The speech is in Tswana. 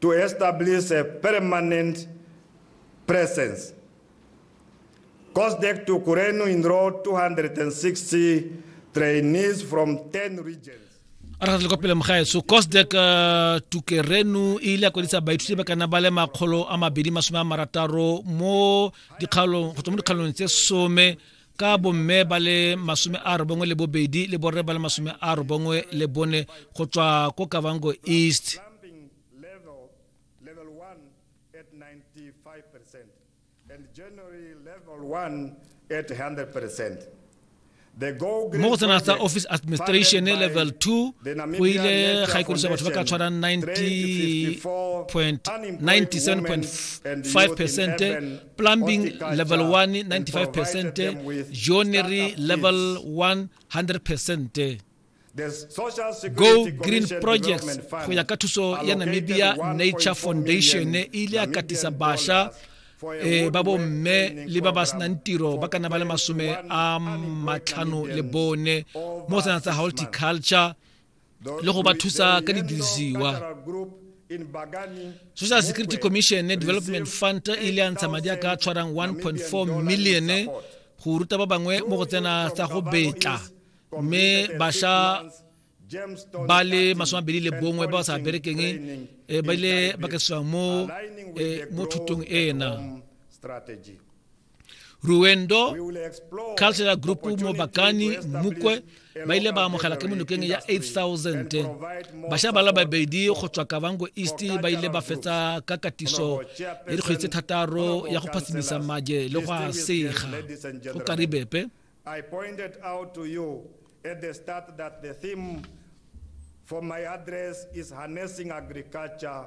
to establish a permanent presence. COSDEC to Kurenu enrolled 260 trainees from 10 regions. a re kwa pele mogaetso cosdek uh, tukerenu e ile ya kwadisa baithuti ba kana ba le makgolo a mabedi masome a marataro mo dikgaolong go tswa mo dikgaolong tse some ka bomme ba le masome a robongwe le bobedi le borre ba le masome a robongwe le bone go tswa ko kavango east mo go tsena tsa office administration level 2 go ile ga ikodiso batho ba ka tshwarang 90.97.5 percent plumbing level 1 95% joinery level 100% go green projects go ya ka thuso ya namibia nature foundation e ile ya katisa basha e ba bo mme le ba ba senang tiro ba kana ba le masome a matlhano le bone mo sena tsa horticulture le go ba thusa ka didirisiwa social security commission development fund e ile ya ntsha madi a ka tshwarang 1.4 million go ruta ba bangwe mo go tsena tsa go betla mme basha ba le masome abedi le bongwe ba ba sa berekeng eh, ba ile ba kesiwang mo eh, thutong ena ruendo cultural group mo bakani mokwe ba ile ba amogela ke monokeng ya 8000 bašwa ba la babedi go tswa kabango east ba ile ba fetsa ka katiso ya dikgwedi tse thataro ya go phasimisa maje le go a sega go karibepe I pointed out to you at the start that the theme for my address is harnessing agriculture